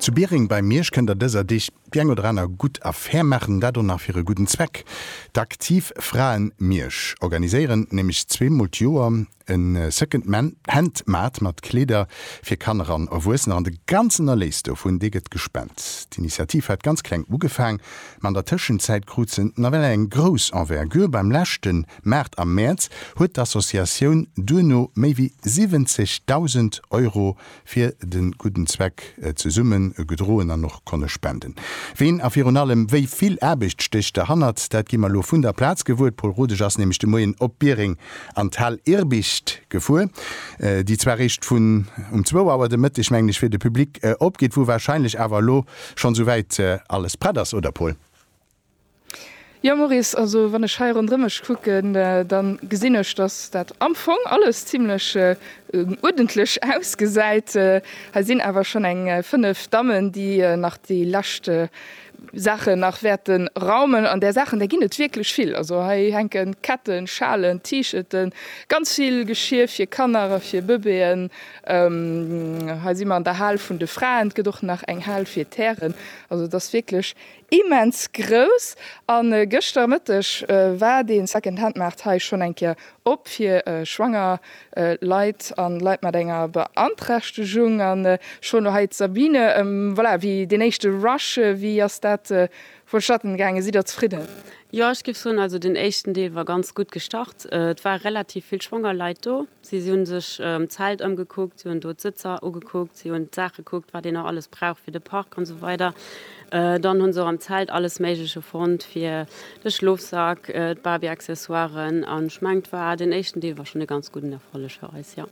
Zu Biereng bei Miersch kënnt der dëser Deeg déi eng oder aner gutt Affär maachen, dat och nach fir e gudden Zweck. D'Aktiv Fraen Miersch organiséieren nämlech zwee mol d'Joer e Second Hand Maart mat Kleeder fir Kanner an Erwuessener an de ganzen Erléis dovun, dee gëtt gespent. D'Initiativ hat ganz kleng ugefaang, ma an der Tëschenzäit krut se nawell eng grouss Envergure. Beim leschten. Maart a Mäerz huet d'Associatioun duerno méi wéi 70.000 Euro fir de gudden Zweck zesumme gedroen an och konne spenden. Ween a virun allem wéi vill Aarbecht stécht derhannert, dat gi mer elo vun der Plaz gewuer. D'Paul Rodesch ass nämlech de Moien op Biereng an d'Hal Irbicht gefuer, déi zwar réischt vun um zwou Auer de Mëtteg, mengen ech, fir de Public opgeet, wou wahrscheinlech awer elo schonns souwäit alles prett ass, oder Paul? Jo Maurice, also wann ech hei ronderëm mech kucken, da gesinn ech, datt dat am Fong alles zimlech uerdentlech ausgesäit. Hei sinn awer schonn eng 5 Dammen, déi nach déi lescht Saachen nach wäerte raumen. An där Saachen, där ginn et wierklech vill. Also hei hänke Ketten, Schalen, T-Shirten, ganz vill Geschir fir Kanner a fir Bëbeeën. Hei si mer an der Hal vun de Fraen. Et gëtt och nach eng Hal fir d'Hären. Also et ass wierklech Immens grouss! A gëschter Mëtteg war dee Second-Hand-Maart hei schonn eng Kéier op fir schwanger Leit a Leit mat enger Beanträchtegung. An ech froen elo hei d'Sabine, Voilà, wéi deen éischte Rush, wéi ass dat vonstatten gaangen? Sidd Der zefridden? Jo, ech géif soen, also deen éischten Deel war ganz gutt gestart. Et ware relativ vill schwanger Leit do. Si hunn sech d'Zelt ëmgekuckt, si hunn do d'Sëtzer ugekuckt, si hunn d'Saache gekuckt, wat een nach alles brauch fir de Park an esou weider. Dann hunn se och am Zelt alles Méigleche fonnt fir de Schlofsak, d'Barbie-Accessoiren an ech mengen, d'war, den éischten Deel war schonn e ganz gudden Erfolleg fir eis, jo.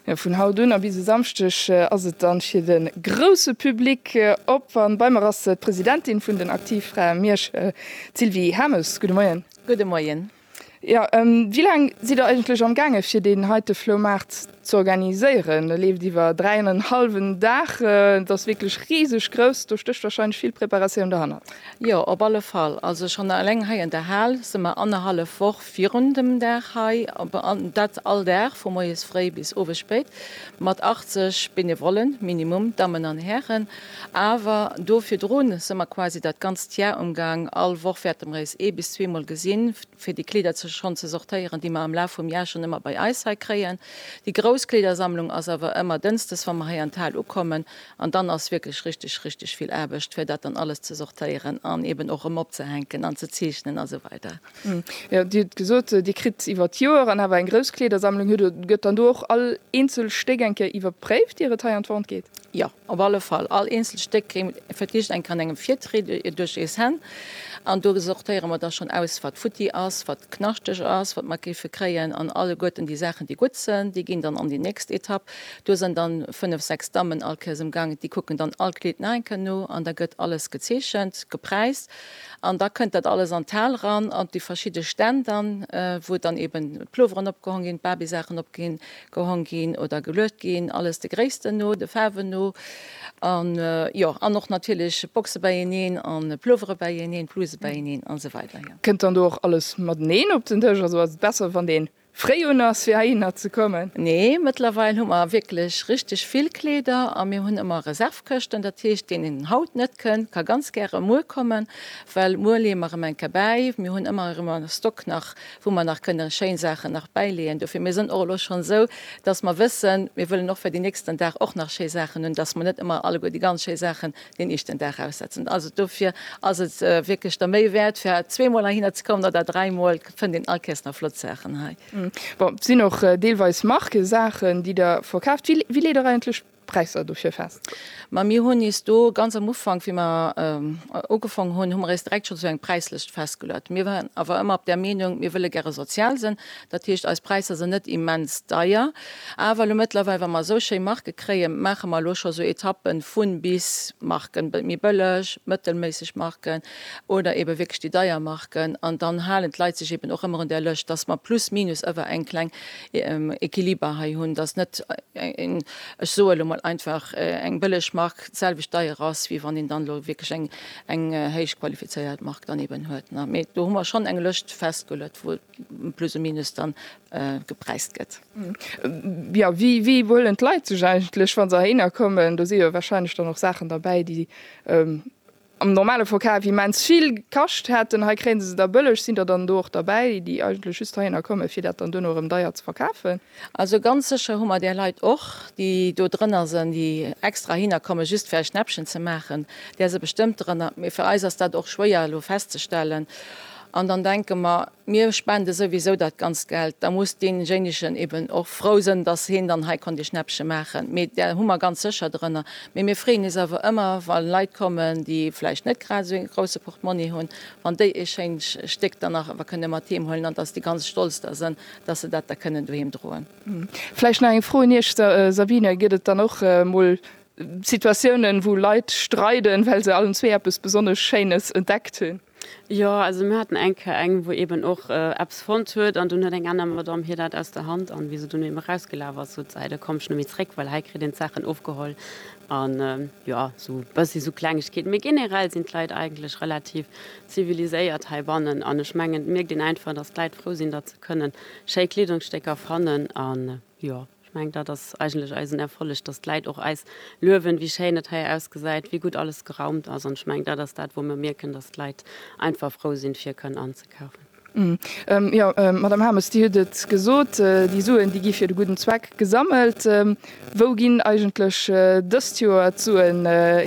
Jo, vun haut un a bis e Samschdeg ass et dann fir de grousse Public op an bei mer ass d'Presidentin vun den Aktivfrae Mierschel, d'Sylvie Hames. Gudde Moien. Gudde Moien. Jo, wéi laang sidd der eigentlech am gaange fir deen heite Floumaart ze organiséieren? E leeft iwwer dräi an en hallwen Dag, et ass wierklech riseg grouss, do stécht warscheinlech vill Preparatioun derhannert. Jo, op alle Fall. Also schonn eleng hei an der Hal si mer annerhallef Woch virun dem Dag hei, an dat all Dag vu moies fréi bis owes spéit, mat 80 Benevollen, minimum, Dammen an Hären. Awer do virdrun se mer quasi dat ganzt Jar umgang. All Woch wäerte mer éis ee bis zwee mol gesinn, fir déi Kleeder ze schonn ze sortéieren, déi mer am Laf vum Jar schonn ëmmer bei eis hei kréien. Déi grouss Kleedersammlung ass awer ëmmer dënsdes, wa mer hei an d'Hal ukommen. An dann ass wierklech richteg, richteg vill Aarbecht, fir dat dann alles ze sortéieren an eben och erëm opzehänken an ze zeechnen a sou weider. Jo, Dir hutt gesot, Dir kritt iwwer d'Joer an awer eng grouss Kleedersammlung. Hutt Der, gëtt dann do och all eenzel Stéck eng Kéier iwwerpréift, ier et hei an d'Vente geet? Jo, Op alle Fall, all eenzelt Stéck verkrigt eng an engem Virtried duerch eis Hänn. An do sortéiere mer da schonn aus, wat futti ass, wat knaschteg ass, wat mer géife kréien. An alleguerten déi Saachen, déi gutt sënn, déi ginn dann an déi nächst Etapp. Do sënn da fënnef, sechs Dammen all Kéiers um Gaang, déi kucken dann all Kleed nach eng Kéier no an da gëtt alles gezeechent, gepräist. An da kënnt dat alles an d'Hal eran, an déi verschidde Stänn dann, wou dann eeben d'Plueweren opgehong ginn, d'Barbie-Saachen opginn, Gehong ginn oder geluecht ginn, alles de Gréissten no, de Faarwen no an jo an och natierlech Boxe beieneen an Pullovere beieneen, Bluse beieneen an esou weider. Kënnt dann do och alles mateneen op den Dësch? Also ass et besser wann ee fréi un ass fir heihinner ze kommen? Nee, mëttlerweil hu mer wierklech richteg vill Kleeder a mir hunn ëmmer Reservekëschten. Dat heescht deen een haut net kënnt, ka ganz gäre muer kommen, well muer leeë mer erëm eng Kéier bäi. Mir hunn ëmmer erëm a Stock nach wou mer nach kënne schéin Saachen nach bäileeën dofir. Mir sënn och elo schonn esou, dass mer wëssen, mir wëllen och fir den nächsten Dag och nach schéi Saachen hunn, dass mer net ëmmer alleguer déi ganz schéi Saachen deen éischten Dag aussetzen. Also dofir ass et wierklech der Méi wäert, fir zweemol heihinner ze kommen oder dräimol, fënnt een all Kéiers nach flott Saachen hei. Bon, et sinn och deelweis Markesaachen, déi Der verkaaft. Wéi leet Der eigentlech Präisser dofir fest. Ma mir hunn eis do ganz am Ufank, wéi mer ugefaangen hunn, hu mer eis direkt schonn esou eng Präislëscht festgeluet. Mir waren awer ëmmer op der Meenung, mir wëlle gäre sozial sinn. Dat heescht, eis Präisser sinn net immens deier. Awer elo mëttlerweil, wa mer esou schéi Marke kréien, maache mer elo scho esou Etappen vu bis Marken, méi bëlleg, mëttelméisseg Marken, oder eebe wierklech déi deier Marken, an dann halen d'Leit sech eeben och ëmmer un där Lëscht, dass mer plus minus ëwer eng kleng Equiliber hei hunn, dass net eng, ech soe lo mol einfach, eng bëlleg Mark d'selwecht deier ass, wéi wann een dann elo wierklech eng, eng héich qualifizéiert Mark dann eeben huet. Mee do hu mer schonn eng Lëscht festgeluet, wou plus ou minus dann gepräist gëtt. Jo, wéi huelen d'Leit sech eigentlech, wa se heihinner kommen? Do si jo warscheinlech dann och Saachen derbäi, déi Am normale Forkat wéi immens vill kascht hätten, hei kréie se se da bëlleg. Sinn der dann do och derbäi, déi eigentlech just heihinner kommen, fir dat dann duerno erëm deier ze verkafen? Also ganz sécher hu mer där Leit och, déi do drënner sënn, déi extra heihinner kommen, just fir eis Schnäppchen ze maachen, där si bestëmmt drënner. Mee fir eis ass dat och schwéier elo festzestellen. An dann denke mer, mir spende souwisou dat ganzt Geld, da muss deejéinegen eben och frou sënn, datt heen dann hei konnt ee Schnäppche maachen. Mee där hu mer ganz sécher drënner. Mee mir freeën is awer ëmmer, wa Leit kommen, déi vläicht net grad esou ee grousse Portmonni hunn, wann déi ee schéint Stéck dann nach ewer kënne mat heem huelen an datt déi ganz stolz da sënn, datt se dat da kënnen doheem droen. Vläicht nach eng Fro un Iech, Sabine, Gëtt et dann och mol Situatiounen, wou Leit streiden, well se allen zwee eppes besonnesch Schéines entdeckt hunn? Jo, also mir haten eng Kéier eng, wou eben och eppes fonnt huet an dunn huet eng aner Madame hir dat aus der Hand an wéi se dunn eben erausgelaf ass, sot se, Ei, da komm ech nemmi zréck, well hei kritt een d'Saachen ofgeholl. An jo, esou e bëssi esou Klengegkeeten. Mee generell sinn d'Leit eigentlech relativ ziviliséiert heibannen an ech mengen et mierkt een einfach, dass d'Leit frou sinn, datt se kënnen schéi Kleedungsstécker fannen an Jo, ech mengen, dat ass eigentlech eisen Erfolleg, dass d'Leit och eis luewen, wéi schéin et hei ausgesäit, wéi gutt alles geraumt ass. An ech mengen, dat ass dat, wou mer mierken, dass d'Leit einfach frou sinn, fir kënnen anzekafen. Jo, Madamm Harmes, Dir hutt et gesot, déi Suen, déi gi fir de gudden Zweck gesammelt. Wou ginn eigentlech dëst Joer d'Suen hei?